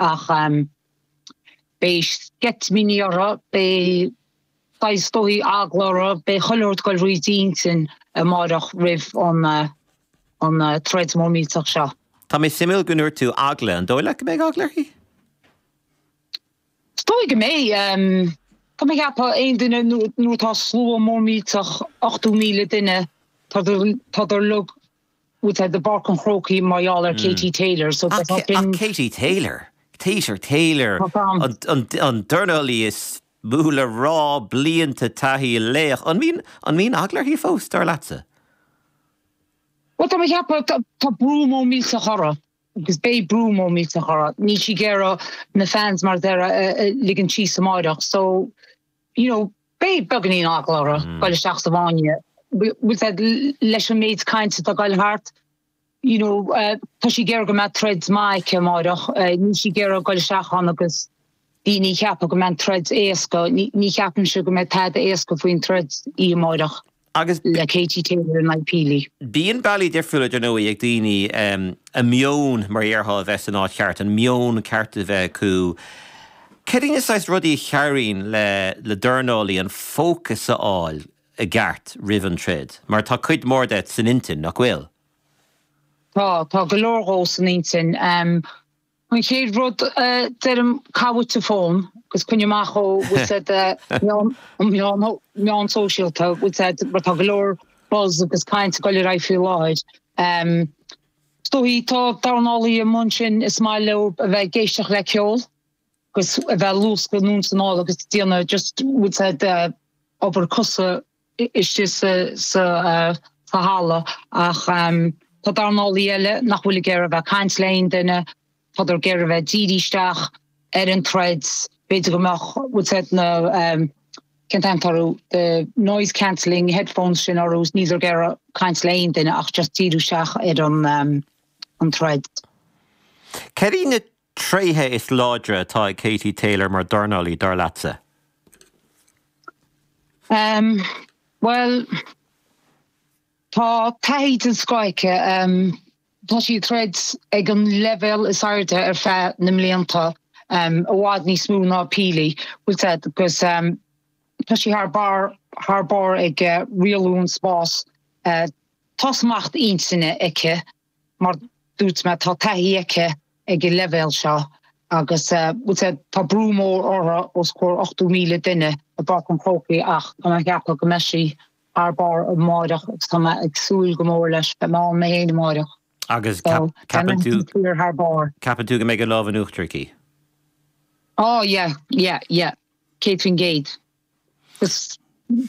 ach beidh sceitimíní uirthi, beidh saghas, is dóichí, eagla uirthi, beidh chuile shórt ag goil thrí d'intinn amáireach roimh an troid mór millteach seo. Tá sé suimiúil go ndúirt tú eagla, an dóigh leat go mbeidh eagla uirthi? Is dóichí go mbeidh, tá mé ag ceapadh aon duine nuair atá slua mór millteach, 80,000 duine, tádar uilig, i bPáirc an Chrócaigh mar gheall ar Katie Taylor so tá sin. Ach Katie Taylor, Tater, Taylor, an dornálaí is mó le rá, blianta taithí, laoch, an mbíonn, an mbíonn eagla uirthi fós, dar leatsa? Bhuel, tá mé ag ceapadh, tá brú mór millteach uirthi, agus beidh brú mór millteach uirthi, níl sí ag iarraidh na fans mar a deir siad a ligean síos amáireach so, You know, beidh beagáinín eagla uirthi ag dul isteach sa bhfáinne, bhfuil a fhios agat, leis an méid cainte atá ag gabháil thart, you know, tá sí ag iarraidh go mbeadh troid maith aici amáireach, níl sí ag iarraidh ag dul isteach ann agus daoine ag ceapadh go mbeidh an troid éasca, ní cheapaimse go mbeidh tada éasca faoin troid oíche amáireach. Agus. le Katie Taylor in aghaidh Pili. Bíonn bealaí difriúla, dar ndóigh, ag daoine a meon, mar a déarfá, a bheith san áit cheart, an meon ceart a bheith acu. Cad iad na saghas rudaí a chabhraíonn le dornálaí an fócas a fháil i gceart roimh an troid, mar tá cuid mhór de san intinn, nach bhfuil? Tá, tá go leor dhó san intinn. An chéad rud a deirim, caith uait an fón agus coinnigh amach ó, bhfuil a fhios agat, na meáin shóisialta, bhfuil a fhios agat, mar tá go leor buzz agus caint ag dul ar aghaidh faoi láthair. Is dóichí, tá dornálaithe amuigh ansin, is maith leo a bheith ag éisteacht le ceol agus a bheith ag luascadh anonn is anall agus ag déanamh just, bhfuil a fhios agat, obair cosa istigh sa halla ach tá dornálaithe eile nach bhfuil ag iarraidh a bheith ag caint le haon duine, tádar ag iarraidh a bheith dírithe isteach ar an troid, b'fhéidir go mbeadh, bhfuil a fhios agat, na, cén t-ainm atá orthu, the noise cancelling headphones sin orthu is níldar ag iarraidh caint le haon duine ach just díriú isteach ar an troid. Céard iad na tréithe is láidre atá ag Katie Taylor mar dhornálaí, dar leatsa? Bhuel, tá taithí den scoth aici. Tá sí ag troid ag an leibhéal is airde ar feadh na mblianta, i bhfad níos mó ná Pili, bhfuil a fhios agat, agus tá sí thar barr, thar barr ag rialú an spáis. Tá smacht intinne aici. mar dúirt mé, tá taithí aici ag an leibhéal seo agus tá brú mór uirthi os comhair 80,000 duine i bPáirc an Chrócaigh ach tá mé ag ceapadh go mbeidh sí thar barr amáireach agus tá mé ag súil go mór leis bheith ann mé fhéin amáireach. Agus ceapann tú, ceapann tú go mbeidh an lámh in uachtar aici? Oh yeah, yeah, yeah, céad faoin gcéad. Is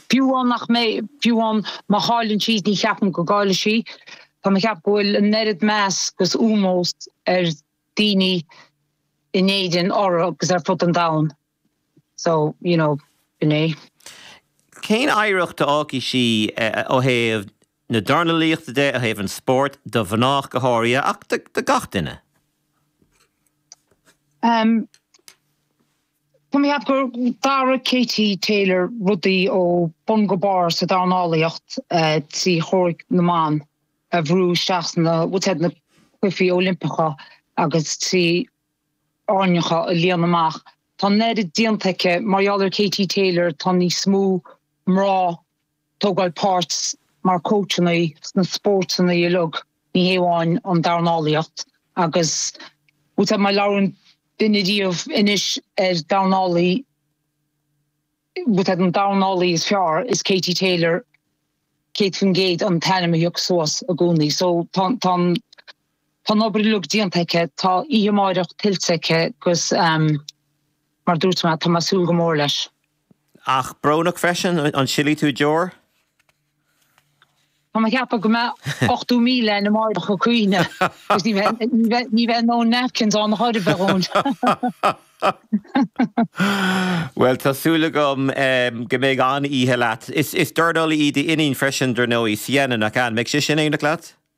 fiú amháin nach mbeidh, fiú amháin má chailleann sí, ní cheapaim go gcaillfidh sí. Tá mé ag ceapadh go bhfuil an oiread meas agus ómós ag daoine in Éirinn uirthi agus ar fud an domhain. So, you know, sin é. Cén oidhreacht a fhágfaidh sí ó thaobh na dornalaíochta de, ó thaobh an spóirt, do mhná go háirithe, ach do gach duine? Tá mé ag ceapadh gur athraigh Katie Taylor rudaí ó bun go barr sa dornálaíocht trí chomhraic na mban a bhrú isteach sna na cluichí Oilimpeacha agus trí arenacha a líonadh amach. Tá an oiread déanta aici mar gheall ar Katie Taylor tá níos mó mná. ag tógáil páirt mar cóitseálaí sna spórtanna uilig, ní hamháin an dornálaíocht agus fiú má labhrann duine ar bith anois ar dornálaí faoin dornálaí is fearr is Katie Taylor 100% an t-ainm a thiocfas suas i gcónaí so tá tá tá an obair uilig déanta aici, tá oíche amáireach tuillte aici agus mar dúirt mé tá mé ag súil go mór leis. Ach brónach freisin, an silfidh tú deor? Tá mé ag ceapadh go mbeadh 80,000 ina mbardach ó chríonna agus ní bheidh dóthain napkins ann a chur a bheadh ann. Bhuel, tá súil agam go mbeidh an oíche leat. Is dornálaí í d'iníon freisin, dar ndóigh, Sienna, nach ea? An mbeidh sí sin in éineacht leat?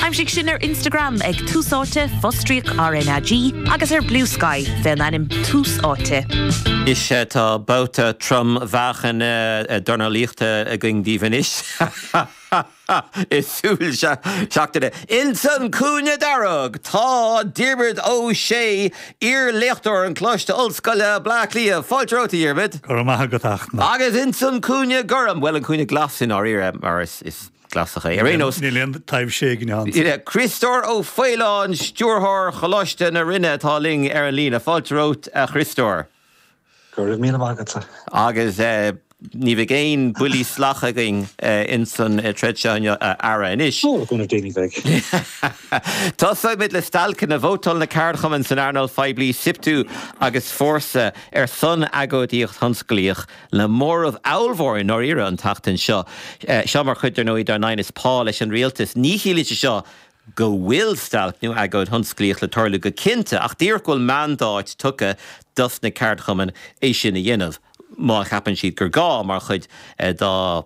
Aimsigh sinn ar Instagram ag Tús Áite, fostríoc RnaG, agus ar Bluesky, faoin ainm Tús Áite. Anois tá babhta trom-mheáchain dornálaíochta againn daoibh anois i súil seachtaine. Ins an cúinne dearg tá Diarmuid Ó Sé, iar-léachtóir i gColáiste Ollscoile Bleá Cliath. Fáilte romhat, a Dhiarmuid. Go raibh maith agat, Fachtna. Agus ins an cúinne gorm, bhuel, an cúinne glas i ndáiríre, mar is. Glasachaí. Ar aon nós. Níl aon taibhse éigin ann. Críostóir Ó Faoláin, Stiúrthóir Choláiste na Rinne atá linn ar an líne. Fáilte romhat, a Chriostóir. Go raibh míle maith agatsa. Agus ní bheidh aon buillí salacha againn ins an troid seo inniu, a fheara, anois. Ó, go na daoine bheidh. Tosóimid le stailceanna. Vótáil na ceardchumainn san earnáil phoiblí, Siptu agus Fórsa, ar son agóidíocht thionsclaíoch. Le móramh ábhalmhór i ndáiríre an tseachtain seo, seo mar chuid, ar ndóigh, dár n-aighneas pá leis an rialtas, ní chiallaíonn sé seo go bhfuil stailc nó agóid thionsclaíoch le tarlú go cinnte, ach díreach go bhfuil mandáit tugtha dos na ceardchumainn é sin a dhéanamh, má cheapann siad gur gá, mar chuid dá.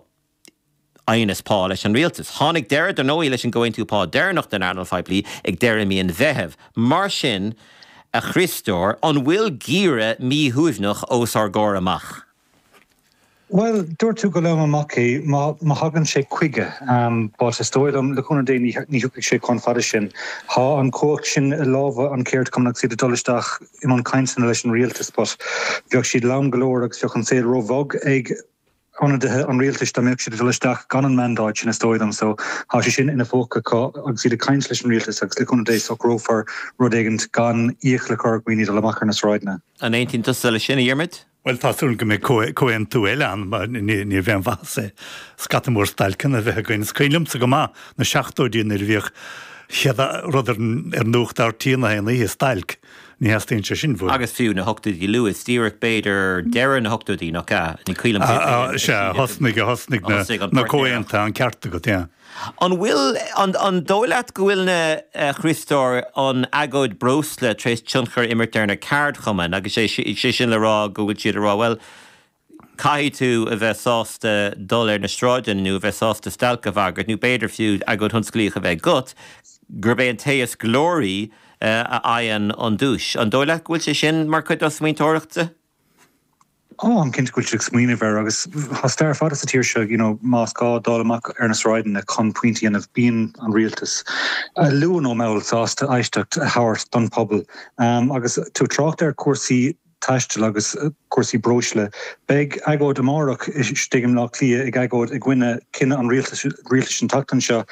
aighneas pá leis an rialtas. Tháinig deireadh, dar ndóigh, leis an gcomhaontú pá deireanach don earnáil phoiblí ag deireadh mhí an Mheithimh. Mar sin, a Chriostóir, an bhfuil geimhreadh míshuaimhneach os ár gcomhair amach? Bhuel, dúirt tú go lom amach é, má thagann sé chuige. But is dóigh liom, le cúnamh Dé, ní thiocfaidh sé chomh fada sin. Tá an chumhacht sin i lámha na gceardchumannach 's iad ag dul isteach i mbun cainteanna leis an rialtas but bheadh siad lom go leor agus bheadh an saol ró-bhog ag ionadaithe an rialtais dá mbeadh siad ag dul isteach gan an mandáit sin, is dóigh liom. So, tá sé sin ina bpóca acu agus iad ag caint leis an rialtas agus le cúnamh Dé, socrófar rud éigint gan iachall a chur ar dhaoine dul amach ar na sráideanna. An aontaíonn tusa leis sin, a Dhiarmuid? Bhuel, tá súil agam go mbeidh comhaontú eile ann, mar ní bheadh aon mhaitheas é scata mór stailceanna a bheith againn. Is cuimhin liomsa go maith na seachtóidí nuair a bhíodh chéad rud ar nuacht RTÉ 'chaon oíche, stailc. Ní theastaíonn sé sin uainn. Agus fiú na hochtóidí luath, díreach b'fhéidir deireadh na hochtóidí, nach ea? Ní cuimhin liom cén bhliain a thosaigh an Sea, a thosnaigh, a thosnaigh na na comhaontaithe, an ceart agat, yeah. An bhfuil, an, an dóigh leat go bhfuil na, a Chríostóir, an agóid breosla tar éis tionchar a imirt ar na ceardchumainn agus sé, sé sin le rá go bhfuil siad a rá, bhuel, caithfidh tú a bheith sásta dul ar na sráideanna nó a bheith sásta stailc a bhagairt nó b'fhéidir fiú agóid thionsclaíoch a bheith agat, gurb é an té is glóraí a fhaigheann an duais. An dóigh leat go bhfuil sé sin mar chuid dá smaointeoireacht? Ó, táim cinnte go bhfuil siad ag smaoineamh air agus tá stair fada sa tír seo, you know, más gá dul amach ar na sráideanna chun pointí a dhéanamh, bíonn an rialtas, luath nó mall, sásta éisteacht a thabhairt don pobal. Agus tú ag trácht ar chúrsaí. taistil agus cúrsaí breosla. Beidh agóid amárach istigh i mBleá Cliath ag agóid i gcoinne cinneadh an rialtais an tseachtain seo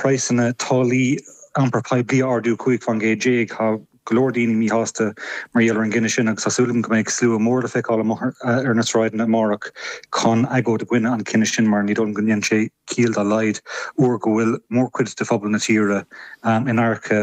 praghsanna táillí iompar poiblí a ardú 15 fán gcéad. Tá go leor daoine míshásta mar gheall ar an gcinneadh sin agus tá súil agam go mbeidh slua mór le feiceáil ar na sráideanna amárach chun agóid i gcoinne an chinnidh sin mar ní dóigh liom go ndéanann sé ciall dá laghad uair go bhfuil mórchuid de phobal na tíre in adharca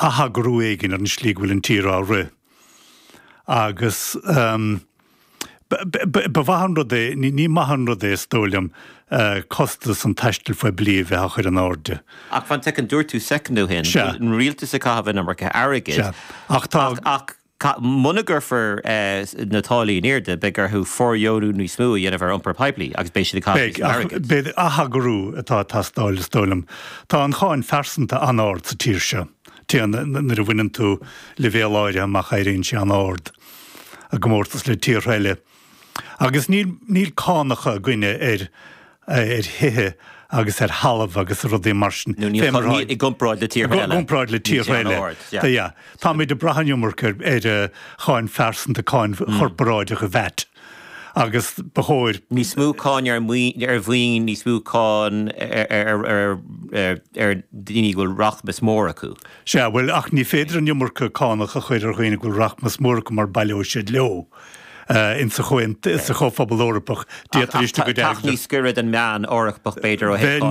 atheagrú éigin ar an slí go bhfuil an tír á rith. Agus ba mhaith an rud é, ní maith an rud é, is dóigh liom, costas an taistil phoiblí a bheith á chur in airde. Ach fan soicind, dúirt tú soicind ó shin go bhfuil an rialtas ag caitheamh an iomarca airgid. Ach tá. Muna gcuirfear na táillí in airde, beidh orthu fóirdheonú níos mó a dhéanamh ar iompar poiblí agus beidh siad ag caitheamh níos mó airgid. Beidh, ach beidh atheagrú atá ag teastáil is dóigh liom. Tá an cháin phearsanta an-ard sa tír seo. Téann, nuair a bhaineann tú leibhéal áirithe amach éiríonn sé an-ard, i gcomórtas le tíortha eile. Agus níl, níl cánacha againne ar, ar thithe agus ar thalamh agus rudaí mar sin. Nó níl, i gcomparáid le tíortha eile. I gcomparáid le tíortha eile. Níl an t-am ard, yeah. Yeah. Táimid ag brath an iomarca ar, ar cháin phearsanta, cáin chorparáideach, vat, agus ba chóir. Níos mó cáin ar mhaoin, ar mhaoin, níos mó cáin ar, ar, ar, ar, ar, ar dhaoine go bhfuil rachmas mór acu. Sea, bhuel, ach ní féidir an iomarca cánach a chur ar dhaoine go bhfuil rachmas mór acu mar baileoidh siad leo. ins sa Chomhphobal Eorpach, d'fhéadfadh go dtarlódh. Teacht níos gaire don meán Eorpach, b'fhéidir, ó thaobh.